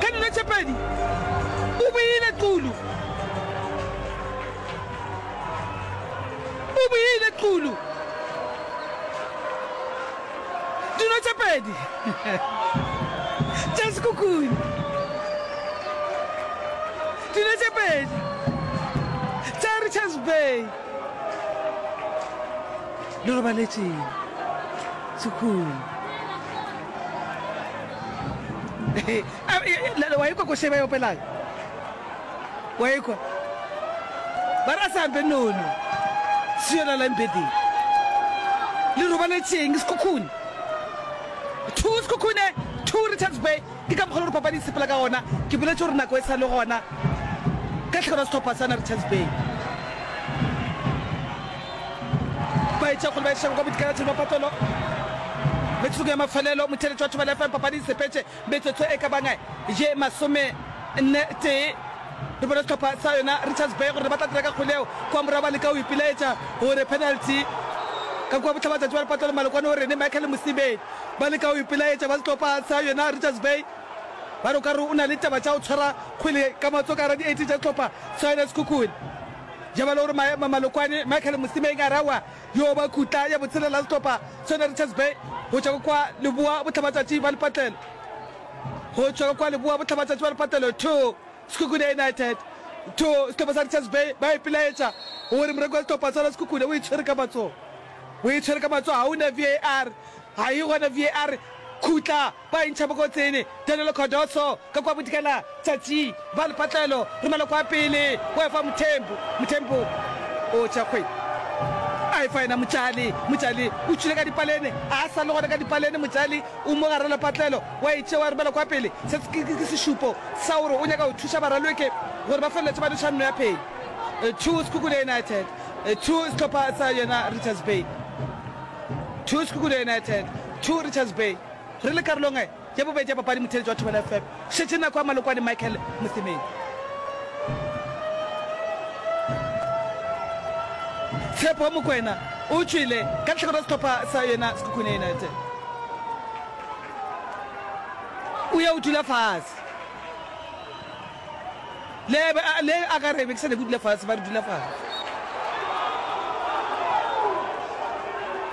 Ka dilo tše pedi o boile qulu. O boile qulu. Dilo tše pedi tša sekhukhune. Dilo tše pedi tša Richards Bay. Le robaletšeng sekhukhune. wa ikwa ko se ba e opelago wa ikwa ba ra sampe nono se yona lampeding le robaletseng sekhukhune two sekhukhune two richards bay ke ka mokgwa le gore papadi sepela ka gona ke boletse gore nako e sa le gona ka tlhekelo setlhopha sana richards bay ba etša gore ba e šago ka bodikaratšheng ba papelo metsotso ya mafelelo motheletšo wa thobela fm papadi e sepetše metsotso e ka banga ye masome nne tee re bona sehlopha sa yona richards bay gore ba tla dira ka kgole eo kwa morago ba leka o ipilaetša gore penalty ka kua botlhaba tšatši ba re patlelo malokwane o rene michael mosibedi ba leka o ipilaetša ba sehlopha sa yona richards bay ba re o ka re o na le taba tša go tshwara kgwele ka matso ka gara di-eighteen tša sehlopha sa yona sekhukhune Jabalo o re maemo a Malokwane, Michael Mosimeng Arawa yo ba khutla ya botshelela ya sehlopha sone Richards Bay go tšwa ka kwa leboa bohlabatšatši ba lepatlelo go tšwa ka kwa leboa bohlabatšatši ba lepatlelo 2 Sekhukhune United 2 sehlopha sa Richards Bay ba ipelaetša gore moreko wa sehlopha sona Sekhukhune o itshwere ka matsogo o itshwere ka matsogo ga o na VAR ga e gona VAR khutla Ba intšha bokotsing, Danilo Cardoso ka kua bodikela, Tsatsi, ba le patlelo, romela kua pele, o efa Mthembu, Mthembu o tšea kgwedi, a efa yena Motšali, Motšali o tšwile ka dipalene, a sa le gona ka dipalene, Motšali o mo garela patlelo, wa e tšea wa e romela kua pele, se ke sešupo sa gore o nyaka go thuša baralweke gore ba feleletše ba no tšha nno ya phedi. Two Sekhukhune United, two sehlopha sa yona Richards Bay, two Sekhukhune United, two Richards Bay. Re le karolong ya bobedi ya papadi motheeletši wa Thobela FM šetše nako ya Malokwane Michael Mosemedi. Tshepo Mokwena o tšwele ka lehlakore la sehlopha sa yena Sekhukhune United. O ya o dula fase. Le be a, le a ka re be ke sa nyake o dula fase, ba re dula fase.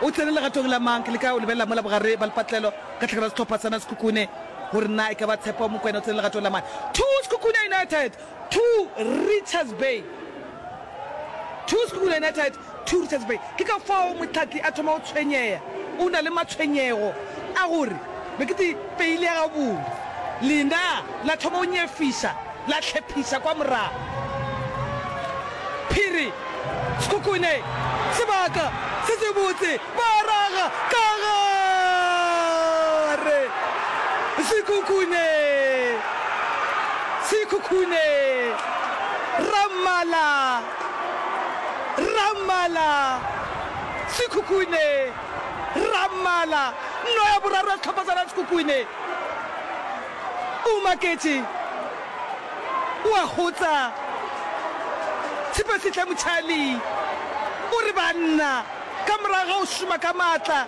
O tsene legatong la mang? Ke leka go lebelela mola bogare ba lepatlelo ka tlhakana sehlopha sa na Sekhukhune gore na e ka ba Tshepo Mokwena o tsene legatong la mang. Two Sekhukhune United, two Richards Bay. Two Sekhukhune United, Two Richards Bay. Ke ka fao mohlahli a thoma go tshwenyeya. O na le matshwenyego a gore be ke peile ya gabone. Lena la thoma go nyefiša, la hlephiša kwa morago. Phiri, Sekhukhune, sebaka se sebotse, ba raga ka gare! Sekhukhune! Sekhukhune! Rammala! Rrammala, Sekhukhune, Rrammala, nno ya boraro ya sehlopha sa Sekhukhune. O maketše, o a gotsa. Tshepasehle Motšhali o re, Banna, ka morago ga go šoma ka maatla,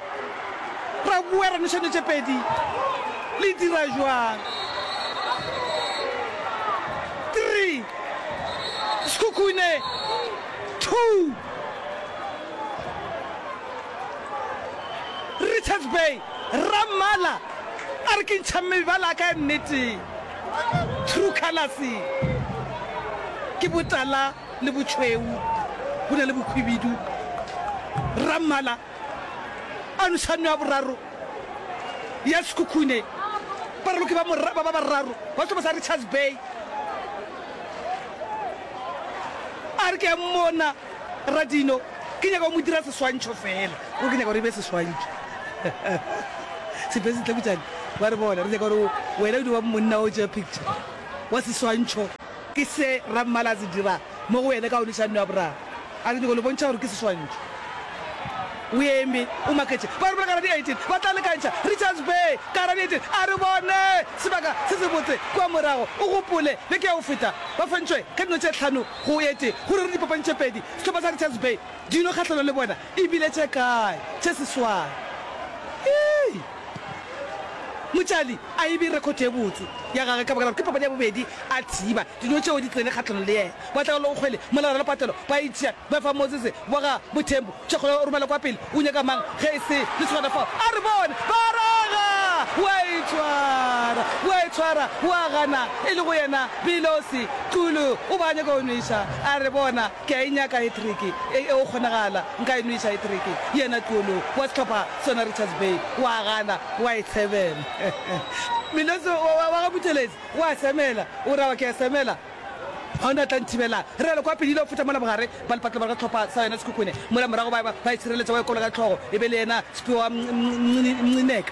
ra bowa ra nwešano tše pedi. Le dira bjang? Three. Sekhukhune, two. Richards Bay, Rammala a re ke ntšha mebala a ka ya nnete. True colors ke botala le botšhweu, go na le bokhwibidu. Rammala. Anušano ya boraro ya Sekhukhune ba raloki ba moraba ba bararo ba sehlopha sa Richards Bay. A re ke a mmona Radino, ke nyaka go mo dira seswantšho fela. Ke nyaka gore e be seswantšho. Sepesi Tlhakutšane ba re bona, re nyaka gore wena o di wa monna o tšea picture wa seswantšho. Ke se Rra Mmala a se dira mo go wena ka audišano ya boraro. A ke nyoko le bontšha gore ke seswantšho. O eme, o maketše. Ba re bolakara di 18 ba tla lekantšha Richards Bay ka hara di 18. A re bone sebaka se sebotse kua morago. O gopole beke ya go feta ba fentšwe ka dino tše hlano go e tee go ruri dipapadi tše pedi sehlopha sa Richards Bay. Dilo kgahlano le bona e bile tše kae tše seswai! Ii, Motšali a ebe rekhothe ye botse ya gage ka baka la gore ke papadi ya bobedi a thiba dilo tšeo di tsene kgahlano le yena. Wa Tlhaollo o kgwele molao la patelo ba itšea ba fa Mosese wa ga Bothembu tšhekgolo ya go romela kwa pele. O nyaka mang ge e se lesogana fao? A re bone ba raga! Wa itshwara, wa itshwara, wa gana e le go yena Bilosi. Xulu o be a nyaka go nweša. A re bona Ke a e nyaka hetreke e, e go kgonagala nka e nweša hetreke yena Tuolong wa sehlopha sona Richards Bay wa gana wa e semela. Melosi wa, wa, wa ga Buthelezi wa semela, o ra wa ke a semela, ga o na a tla nthibela. Realo kwa Pelile o feta mola bogare ba lepatlola ga sehlopha sa yona Sekhukhune mola morago ba, ba, ba e sireletša wa e kologa hlogo e be le yena Sepiwa wa Mncineka.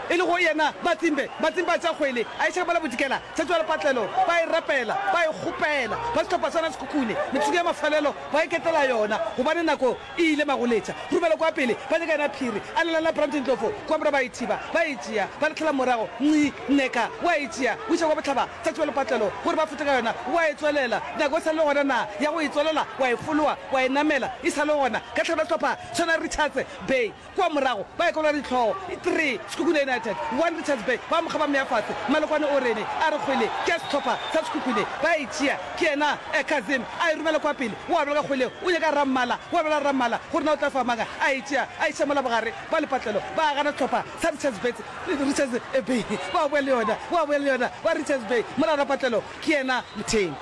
E le go yena, batsimbe, batsimbe ba tša kgwele, a eša ka mola Bodikela, Tshetšoalepatlelo, ba e rapela, ba e kgopela, ba sehlopha sona sekhukhune, metsotso ya mafelelo ba iketlela yona, gobane nako e ile magoletša. Rumelo kwa pele, ba nyaka yena phiri, a lelela Brandon Ndlovu kwa morago ba e thiba, ba e tšea, ba latlhela morago, nci, Nneka o a e tšea, o iša kwa bohlaba, Tshetšoalepatlelo, gore ba fete ka yona, o a e tswelela, nako e sa le gona na ya go e tswelela, wa e foloa, wa e namela, e sa le gona, ka tlhano sehlopha sona Richards Bay, Kua morago, ba ekelwa ditlhogo, three, Sekhukhune United, one, Richards Bay, ba mo kgaba mea fatshe, Malokwane o rene, a re kgwele ke ya sehlopha sa Sekhukhune, ba e tšea, ke yena eh, Kazim, a e romela kua pele, o abela ka kgwele, o nyaka Rammala, o abela Rammala, gore na o tla fa mang, a e tšea, a iša mola bogare ba lepatlelo, ba gana sehlopha sa Richards Bay, Richards Bay, ba boya le yona, ba boya le yona, ba Richards Bay, mola rapatlelo, ke yena Motheng.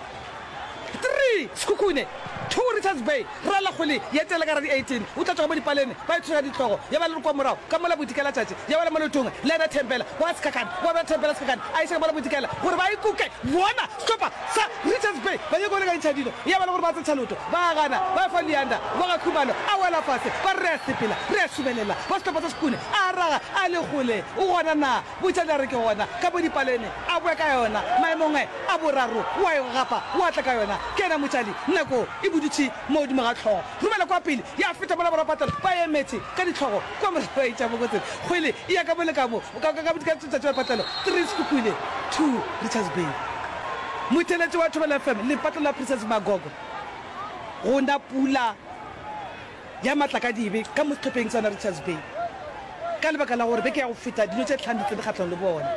Three, Sekhukhune, Two, Richards Bay, Rra Lakgole ya etela ka radi eighteen, o tla tšwa ka mo dipalene, ba ithoša ditlogo, ya ba le re kua morago, ka mola Bodikalatšatši, ya ba le Molotong, Leather Thembela, wa Sekhakhane, wa ba Thembela Sekhakhane, a iša ka mola Bodikela, gore ba ikuke, bona, setopa, sa, Richards Bay, ba nyaka go lekantšha dilo, ya ba le gore ba tsetšha loto, ba gana, ba fa Leander, wa ga Khumalo, a wela fase, ba re re a sepela, re a subelela, wa setopa sa Sekhukhune, a raga, a Lekgole, o gona na? Butša nare ke gona ka mo dipalene a boe ka yona maemong'e a boraro wa e gapa wa tla ka yona ke yena motšali nako e budutši mo godimo ga tlhogo romela kwa pele ya feta mola borwa patelo ba emetše ka ditlhogo kwa morago ba itša bokotsing kgwele e ya ka mo le ka mo ka ka ka tšatši la patelo three sekukule two richards bay motheletši wa thobela fm lepatlo la princess magogo go na pula ya matlakadibe ka mo sehlopheng sona Richards Bay ka lebaka la gore beke ya go feta dino tše tlhano di tsene kgatlhong le bona.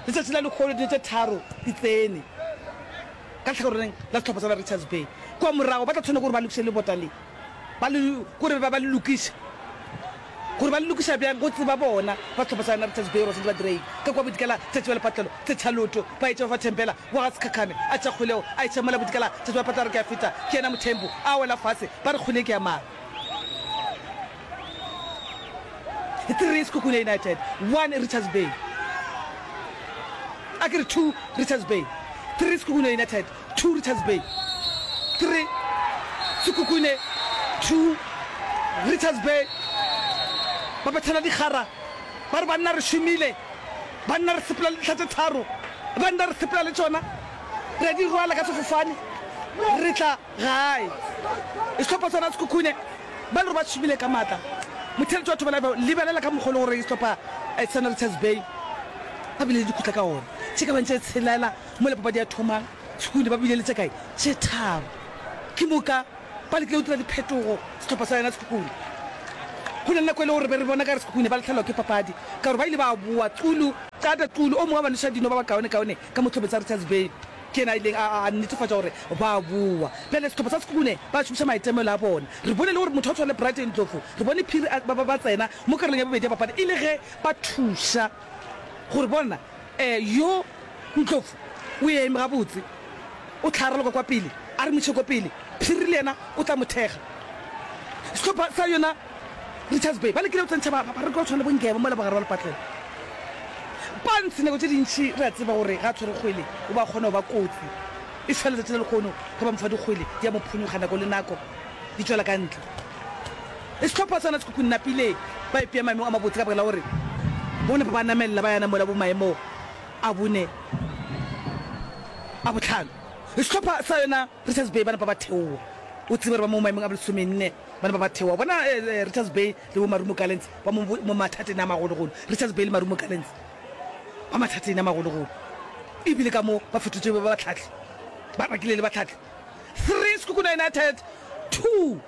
Letšatši la lekgolo dino tše tharo di tsene ka lehlakoreng la sehlopha sona Richards Bay. Kua morago ba tla tshwanela ke gore ba lokiše lebota le, ba le, ke gore ba, ba le lokiše. Gore ba le lokiša bjang go tseba bona ba sehlopha sa yona Richards Bay Ross le Badiredi ka kwa Bodikela tšatši ba le patlelo tse tšhaloto ba etša ba fa Thembela wa ga Sekhakhane a tša kgolego a eša mola Bodikela tšatši ba patla a re ke a feta ke yena Mothembu a wela fase ba re kgole ke ya mang Three Sekhukhune United One Richards Bay a ke re Two Richards Bay Three Sekhukhune United 2 Richards Bay 3 Sekhukhune 2 Richards Bay ba bethela dikgara ba re banna re šomile banna re sepela le dihla tše tharo banna re sepela le tšona re a di rwala ka sefofane re tla gae sehlopha sona Sekhukhune ba le gore ba šomile ka maatla motheletši wa thobela lebelela ka mokgolo gore sehlopha eh, sona Richards Bay ba bile le dikhutla ka ona tše ka bantše tshelela Mola papadi ya thoma, Sekhukhune ba bile le tše kae? Tše tharo. Ke moka ba lekile go dira diphetogo sehlopha sa yona Sekhukhune. Go na le nako e le gore be re bona ka gare Sekhukhune ba lahlelwa ke papadi ka gore ba ile ba boa. Xulu, Qada Xulu, o mongwe wa banoša dino ba bakaonekaone ka mo tlhophe tsa Richards Bay, ke yena a ileng a netefatša gore ba a boa. Bjale sehlopha sa Sekhukhune ba šomiša maitemogelo a bona. Re bone le gore motho wa go tshwana le Brighton Ndlovu, re bone phiri a ba tsena mo karolong ya bobedi ya papadi e le ge ba thuša gore bona Ee, yo Ntlofu o eme gabotse, o tlhaaroloka kwa pele, a re mošeko pele, Phiri le yena o tla mo thekga. Sehlopha sa yona Richards Bay ba lekile go tsentšha bareki ba go tshwana le bo Ngeba mola bogare ba lepatlela. Pants nako tše dintši re a tseba gore ga a tshwere kgwele o ba kgona go ba kotsi, e šwa letšatši la lekgono ge ba mo fa dikgwele di a mo phonyokga nako le nako di tšwela ka ntle. Le sehlopha sona se kukunnapile, ba ipea maemong a mabotse ka baka la gore bona ba ba namelela ba yana mola bo maemo a bone, a bohlano. Le sehlopha sa yona Richards Bay ba napa ba theowa. O tsebe gore ba mo maemong a bolesomenne, ba napa ba theowa. Bona Richards Bay le bo Marumo Gallants ba mo mo mathateng a magologolo. Richards Bay le Marumo Gallants ba mathateng a magologolo e bile ka mo ba fetotšwe ba bahlahli, ba bakile le bahlahli. Three Sekhukhune United, two.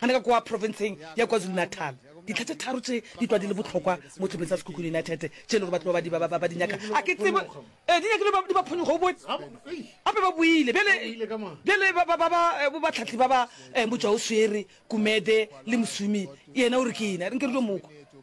Gane ka kua profenseng ya KwaZulu-Natal, dintlha tše tharo tše di tlwa di le bohlokwa mo tlhopheng sa Sekhukhune United tše e lego batho ba ba ba di nyaka. A ke tsebe ee, di nyakile ba di ba phonyoga, o bone. Gape ba boile bjale, bjale ba ba ba bo batlhahli ba ba, Mojawoswere, Gumede le Mosumi yena o re ke ena. Re nke re yo mo kwa.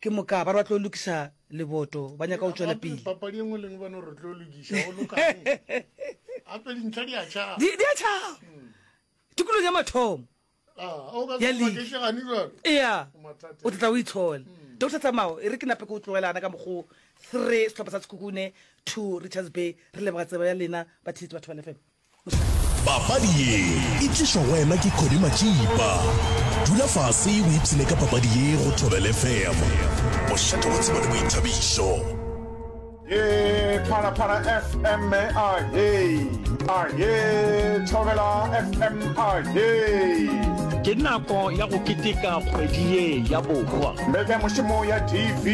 Ke moka ba re ba tlo lokiša leboto, ba nyaka go tšwela pele. Papadi e nngwe le nngwe ba no re tlo lokiša, go lokang? Gape dintlha di a tšhaba. Di a tšhaba. Hmm. Tikolong ya mathomo. Ah, o ka se makešegane jalo. Ea. O tla o itshola. Hmm. Doctor Tsamao e re ke nape ke o tlogelana ka mokgo three setlhopha sa Sekhukhune two Richards Bay re leboga tsebo ya lena ba theletsi batho ba lefemo Papadi ye e tlišwa go wena ke Cody Matšipa. Dula fase o ipshine ka papadi ye go Thobel FM. Bošate wa tsebo le boithabišo. Ye Phalaphala FM a ye a ye Thobela FM a ye ke nako ya go keteka kgwedi ye ya borwa mbeke mošomo ya tv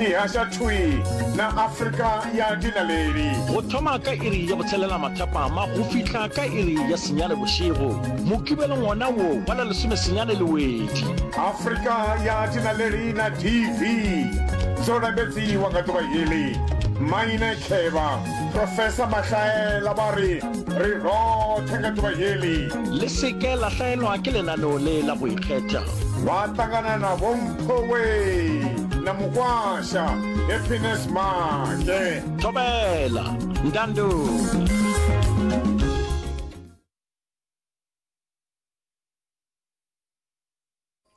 e hasha thwi na afrika ya dinaledi go thoma ka iri ya Tselela mathapama go fihla ka iri ya senyane bošego. Mokibelo ngwana wo wa la lesome senyane le wedi. Afrika ya Tinalerina TV zo rambetsi wa nga tuba hili Maine Kheba Professor Mahlaela ba ri ri rothe nga tuba hili Le se ke la hlaelwa ke lenaneo le la go ikgetha. Ba tangana na Vho Mpho Wee na Mukwasha Happiness Make. Thobela,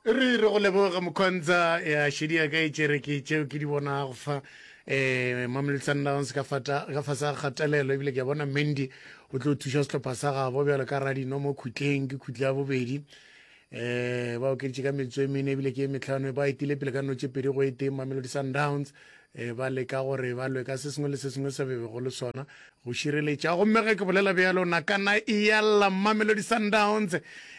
re re go leboga mokgontsa ya šedi ya ka e tšere ke tšeo ke di bonago fa um mamelodi sundowns ka fasa kgatelelo ebile ke a bona mandy o tlo thuša sehlopha sa gabo bjalo ka radino mo khutleng ke khutla ya bobedi eh ba okeditše ka metsotso e mene ebile ke e metlhano e ba etile pele ka notše pedi go eteng mamelodi sundowns um ba leka gore ba lwe ka se sengwe le se sengwe se bebego le sona go šireletša gomme ge ke bolela bjalo nakana e yalla mamelodi sundowns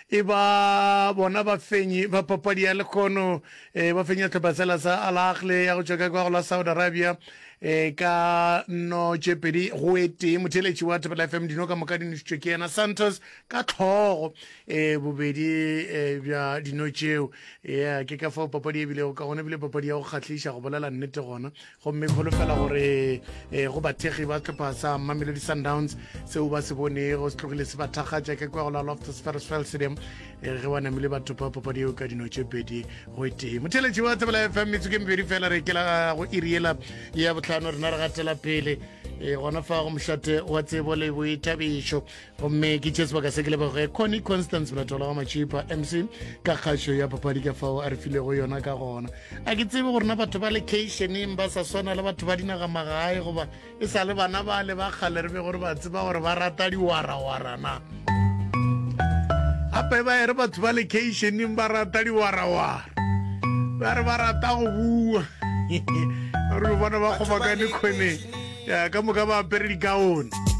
e ba bona bafenyi ba papadi ya lekgono um ba fenya tlhopha sela sa alagle ya go tšwa ka kwa go la saudi arabia um ka notše pedi go eteng motheletši wa thapela fm dino ka moka di nošitšwe ke yena santos ka hlogo e bobedi e, bja dino tšeo ya ke ka fao papadi e bilego ka gona ebile papadi ya go kgahliša go bolela nnete gona gomme kgolofela gore e, go bathekgi ba setlhopha sa mamelodi sundowns seo ba se bonego se tlogile se ba thakgatša ke kwa go la loftus ferrisfeld stadium e ge ba namile batho pa papadi eo ka dino tše pedi go tee motheletši wa tsebela fm metsoko e mebedi fela re kela go iriela ya botlhano rena re gatela pele e gona fa go mošate wa tsebo le boithabišo gomme ke tše sebaka se ke leboge conny constance bolatola wa matšhipa mc ka kgašo ya papadi ka fao a re filego yona ka gona a ke tsebe gorena batho ba lekeišeneng ba sa swana le batho ba dinaga magae goba e sa le bana ba le ba kgale re be gore ba tseba gore ba rata diwarawara na gape ba ere batho ba lekeišeneng ba rata diwarawara ba re ba rata go bua re bona ba kgobakane kgoneng ka moka ba apere dikaone